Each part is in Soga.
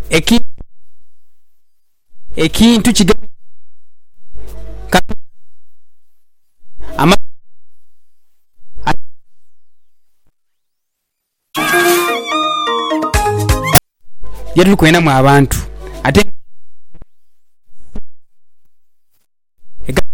Ekintu ekintu kigambibwa Katonda amazima aye ye tuli kwenamu abantu ate nga egamba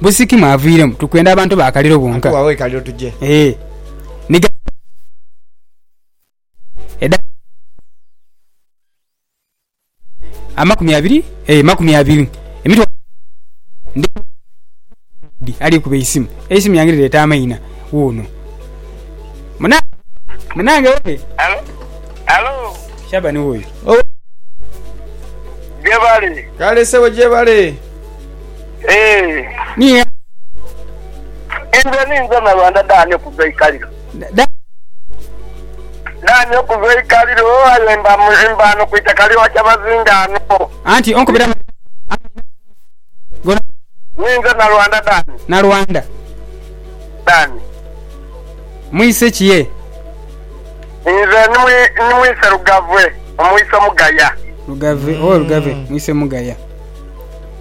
Busikima aviiremu, tukwenda abantu ba kaliro bonka. Atuwe agho e kaliro tuje. Ee. Ni ghaligho edhagano edh'amagezi amakumi abiri, ee, makumi abiri, emitwalo ebiri. Ndi kubona Daudi ali kukuba eisimu. Eisimu yange lireeta amaina. Wuuno. Muna, munange weere. Halo? Halo? Shabani wuuyo. Owe. Gyebali. Kale ssebo gyebale. Eeh. Enze ninze Nalwanda Dani okuva eikaliro. Dani okuva eikaliro aye mba ghano ku itaka lya Kyabazinga ghano. Ninze Nalwanda Dani. Nalwanda. Dani. Mwise ki ye? Nze ni mwise Lugave omwise Mugaya. Lugave, ooh Lugave mwise Mugaya.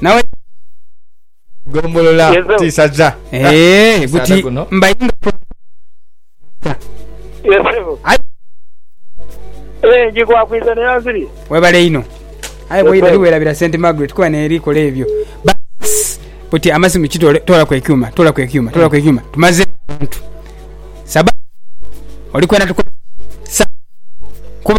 Nawe Gombolola Yezo. tisaza. eeh Musaadha buti guno. mbayinga ku Yesebo. Ai. Eh, njikwakwiza ne yanziri. webale inho aye bwoira Yes, sir. liwerabira st margaret kuba neeri kola ebyo Bas, buti amasimu kitole tolaku ekyuma tolaku ekyuma tolaku ekyuma tumaze abantu saba olikwena tuko sa kuba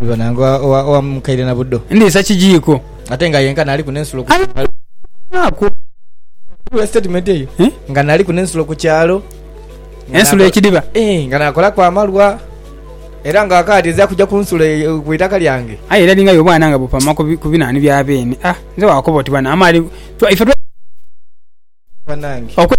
Bibona nga owa- owamukaire na budo Ndhiisa kijiiko. ate nga yenka naaliku n'ensulo ku Aye naaku. Wulira statement eyo Eh? nga naaliku n'ensulo ku kyalo Nga Ensulo nakola- ekidiba. Eh, nga nakolaku amalwa era nga akaati ezira kuja ku nsulo eyo- ku itaka lyange Aye era linga y'obwana nga bupama ku bi- ku binaani bya beene. Ah, nze waakoba oti bwana amaali. Twa- Ife twa- banange okwe-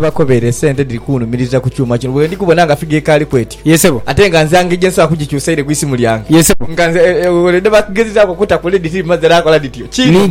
bakobere esente edhiri kunhumiriza ku kyuma kino. Bwendi kubona nga figa ekaali kwetyo. Ye sebo. Ate nga nze angeri gyensobola kugikyusa ire ku isimu lyange. Ye sebo. Nga nze were dhebakugezezaaku okuta ku lady tiri mazi era nkola dhityo. Kiri.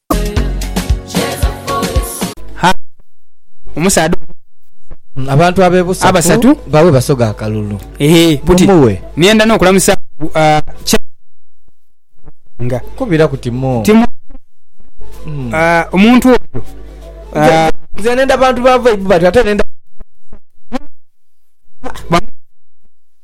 Ha, omusaadha omu. Abantu abebusa Abasatu. ku bawe Basoga akalulu. Ehe, buti Mumuwe. niyenda n'okulamusa ku a kya nga Kubira kuti mu. ti mu a omuntu oyo a Nze nenda bantu ba vaibu batyo ate nenda. ba